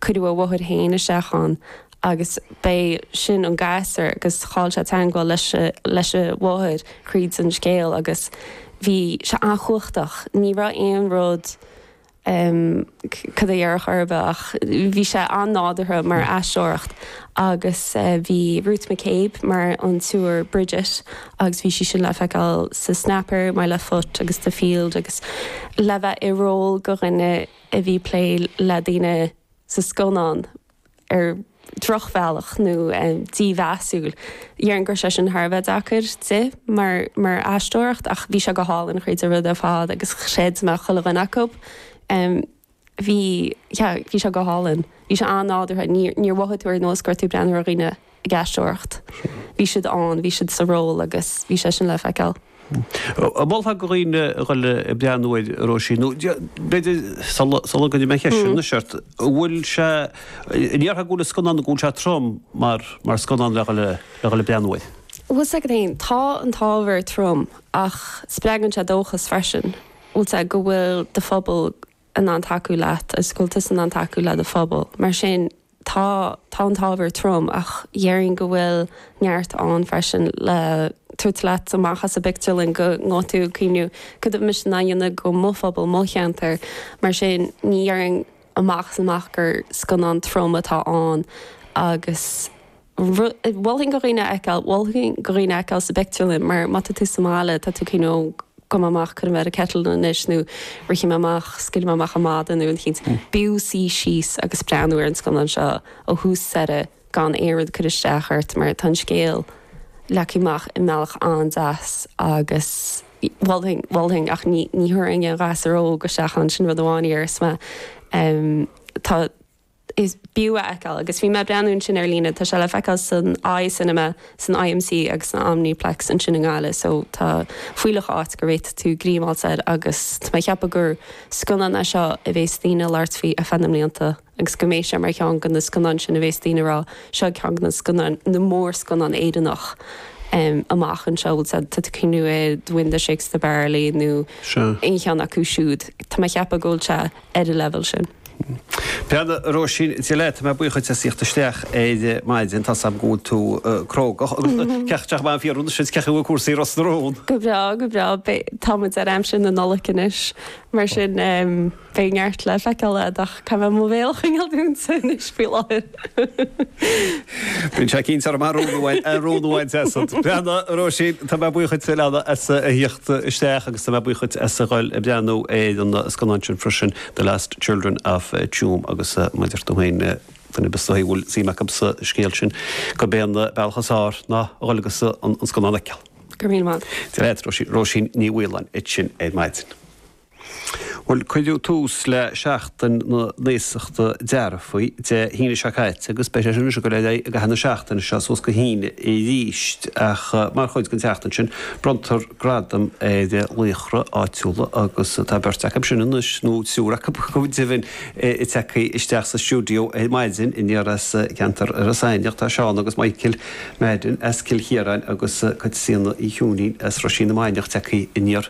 cuireadh a mháthair féin isteach ann agus b'é sin an gasur agus chaill sé teangmháil leis leis a mháthair thríd an scéal agus bhí sé an-chumhachtach ní raibh aon rud em cad é dhéarfadh ar bith ach bhí sé an-nádúrtha mar aisteoir agus bhí Ruth McCabe mar an tSiúr Bridget agus bhí sí sin le feiceáil sa Snapper, My Left Foot agus The Field agus le bheith i ról go dhuine a bhí plé le daoine sa scannán ar dhrochbhealach nó dímheasúil. Dhéarfainn go raibh sé sin thar a bheith deacair di mar mar aisteoir ach bhí sé go hálainn achuile rud ar fad agus chreid mé chuile dhuine acu. Bhí, yeah, bhí sé go hálainn. Bhí sé an-nádúrtha. Níor níor mhothaigh tú ar nós go raibh tú ag breathnú ar dhaoine. ag aisteoireacht. Bhí siad ann, bhí siad sa ról agus bhí sé sin le feiceáil. An molfá go dhaoine a dhul ag breathnú air, Róisín, nó b'fhéidir sula gcuirfidh mé an cheist sin anois ort, an bhfuil sé, an ndéarfá go bhfuil an scannán, go bhfuil sé trom mar mar scannán le dhul ag breathnú air? Bhuel, tá sé, gan dabht, tá an t-ábhar trom ach spreagann sé dóchas freisin, tá a fhios agat, go bhfuil do phobal in ann tacú leat, Ealaín is cultúr in ann tacú le do phobal. Mar sin, tá tá an t-ábhar trom ach déarfainn go bhfuil neart ann freisin le tabhairt leat amach as an bpictiúrlann go mbeidh tú ag cuimhniú céard atá mise in ann a dhéanamh go mo phobal, go mo cheantar. Mar sin, ní déarfainn amach is amach gur scannán trom atá ann agus. Mholfainn go dhaoine é a fheiceáil, mholfainn go dhaoine é a fheiceáil sa bpictiúrlann mar má tá tú sa mbaile, tá tú cineál, ó gabhfaidh mé amach, cuirfidh mé air an kettle anois nó rithfidh mé amach, scaoilfidh mé amach an madadh nó rud eicínt. B'fhiú suí síos agus breathnú ar an scannán seo ó thús go deireadh gan aon rud ag cur isteach ort mar tá an scéal leagtha amach i mbealach an-deas agus mholfainn, mholfainn ach ní thabharfainn aon ghasúr óg isteach ann, sin rud amháin a dhéarfas mé. Tá. is féidir é a fheiceáil agus bhí mé ag breathnú ansin ar líne, tá sé le feiceáil san Eye Cinema, san IMC agus san Omniplex ansin i nGaillimh so tá fuílleach áit go bhféadfaidh tú greim a fháilt air agus tá mé ag ceapadh gur scannán é seo a bhéas daoine ag labhairt faoi ar feadh na mblianta agus go mbeidh sé mar cheann de na scannáin sin a bhéas daoine ag rá seo ceann de na scannáin, na mórscannáin Éireannach amach anseo, tá a fhios agat, tá tú ag cuimhniú ar Wind That Shakes the Barley nó aon cheann acu siúd, tá mé ag ceapadh go bhfuil sé. ar an leibhéal sin. Bhuel a Róisín, Dia leat, tá mé buíoch díot as tíocht isteach ar maidin, tá 's agam go bhfuil tú cruógach agus caithfidh mé fiafraí anois, cén chaoi a bhfuil cúrsaí Ros na Rún. Go breá, go breá, tá muid ar aimsir na Nollag anois, mar sin beidh neart le feiceáil agat ach caithfidh mé mo bhéal a choinneáil dúnta anois faoi láthair. Bíonn sé cinnte orm ar rún amháin, ar rún amháin deasad. Breanna, Róisín, tá mé buíoch duit a leana as a thíocht isteach agus tá mé buíoch duit as a dhul ag breathnú ar an scannán sin freisin, The Lost Children of Tuam agus mar a dúirt tú féin, duine ar bith is dóichí a bhfuil suim acub sa scéal sin, gurb é an bealach is fhearr ná a dhul agus an scannán a fheiceáil. Go raibh míle maith agat. Dia dhaot, Róisín Ní Mhaoláin ansin ar maidin. Bhuel, cuireadh tús le Seachtain na nAosachta Dearfaí Dé hAoine seo caite agus beidh sé sin ag dul ar aghaidh i gcaitheamh na seachtaine seo suas go hAoine arís ach mar chuid den tseachtain sin bronntar gradaim ar laochra áitiúla agus tá beirt acu sin anois nó triúr acu go deimhin tagtha isteach sa stiúideo ar maidin aniar as ceantar Iorras Aithneach. Tá Seán agus Michael Madden as Cill Chiaráin agus Caitríona Uí Chiúinín as Roisín na Mainiach tagtha aniar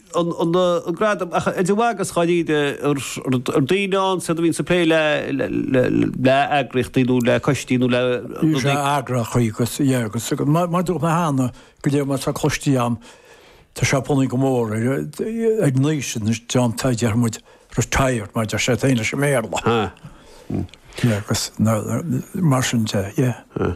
an gradam ach de bharr dháiríre ar daoine ann siad a bhíonn ag plé le eagraíochtaí nó le coistí nó le rud éigin. Bhí sé eagraithe chuí agus, yeah, agus mar dúirt mé cheana go dtí mar tá coistí ann tá sé bunaithe go mór ar ag naois in is deán tá dear muid retired mar a deir siad insa mBéarla. Agus mar sin de, yeah.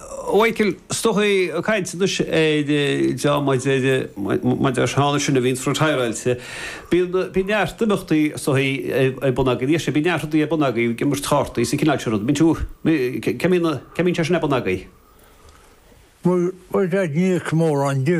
Mhichael, is dóichí ag caint anois ar John maidir maidir leis na daoine sin a bhíonns retireáilte. Bíonn bíonn neart imeachtaí is dóichí ar bun agaibh, níl sé, bíonn neart rudaí ar bun againn, bíonn imirt chártaí is an cineál sin rud. Bíonn tú, cé mbíonn cé mbíonn sé sin ar bun agaibh? Bhuel, beidh níos mórán di.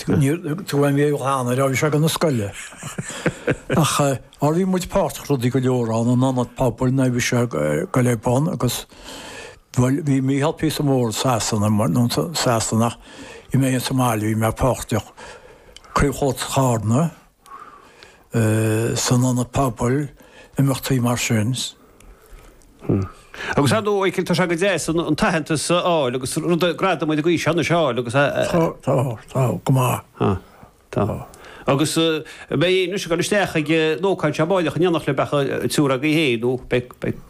Tugaim léi dhá n-aire, bhí siad ag dul 'na scoile. Ach, mar bhí muid páirteach i rudaí go leor ann, an Ionad Pobail nuair a bhí sé ag dul ar bun agus, bhuel, bhí Micheál píosa mór i Sasana, nó Sasanach, bhí mé sa mbaile, bhí mé páirteach, Craobh Chultúir Charna, San ionad pobail, imeachtaí mar sin. Agus ar ndóigh, Mhichael, tá sé go deas an t-aitheantas a fháil agus rudaí, gradaim de ghaois seo anois a fháil agus a. Tá, tá, tá, go maith. Tá, tá. Agus beidh sibh ag dul isteach ag an ócáid seo amárach i nDomhnach le beacha an triúr agaibh féin nó beidh, beidh.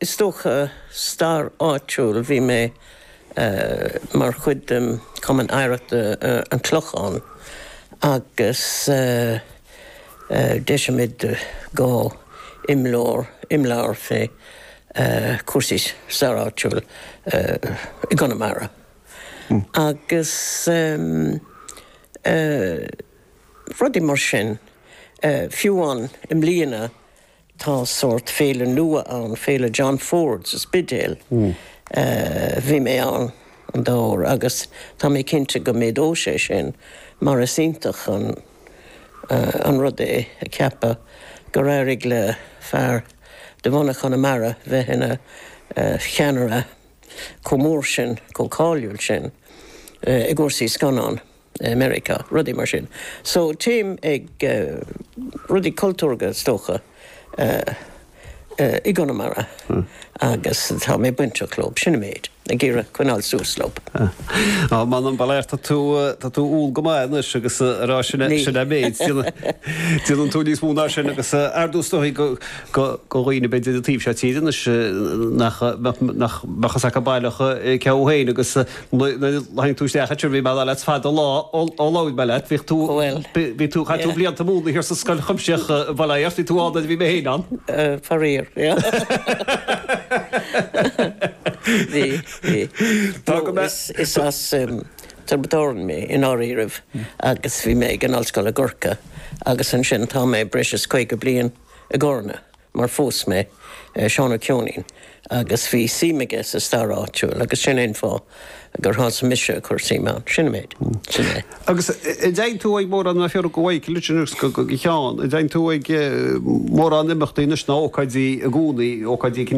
Is dócha, stair áitiúil, bhí mé mar chuid den Chumann Oidhreachta an Chlocháin agus d'eisigh muid dhá imleabhar, imleabhar fé chúrsaí stair áitiúil i gConamara agus rudaí mar sin, fiú amháin i mbliana, Tá sórt féile nua ann, Féile John Ford sa Spidéal. Bhí mé ann an dá uair agus tá mé cinnte go méadóidh sé sin mar is iontach an rud é a cheapadh gur éirigh le fear de bhunadh Chonamara bheith ina cheannaire chomh mór sin, chomh cáiliúil sin i gcúrsaí scannán. i Meiriceá, rudaí mar sin. So téim ag rudaí cultúrga is dócha i gConamara agus tá mé bainteach leo, sin an méid, ag iarraidh coinneáil suas leo. Á, m'anam, ba léir, tá tú, tá tú umhal go maith anois agus ag rá sin, sin an méid, déanann tú níos mó ná sin agus ar dtús is dóigh go, go, go dhaoine a bheidh ar an taobh seo tíre anois nach, nach, nach, nach mbeadh a fhios acu baileach cé thú féin agus, Nuair a tháinig tú isteach ansin bhí mé ag rá leat fada an lá ó labhair mé leat bhíodh tú bhí tú chaith tú blianta ag múineadh thiar sa scoil chuimsitheach bhuel tá a fhios bhí tú ann nuair a bhí mé féin ann. Faraor. Bhí bhí. Tá go mbeadh. Is as Tiobraid Árann mé i ndáiríribh agus bhí mé ag an Ollscoil i gCorcaigh agus ansin tá mé breis is caoga bliain i gCarna. mar phós mé Seán Ó Ceoinín agus bhí suim aige sa stair áitiúil agus sin é an fáth gur thosaigh mise ag cur suime ann. Sin an méid. Sin é. Agus an dtéann tú ag mórán a threoraigh go Mhaidhc Richard agus go Sheán, an dtéann tú ag mórán imeachtaí anois ná ócáidí i gcónaí, ócáidí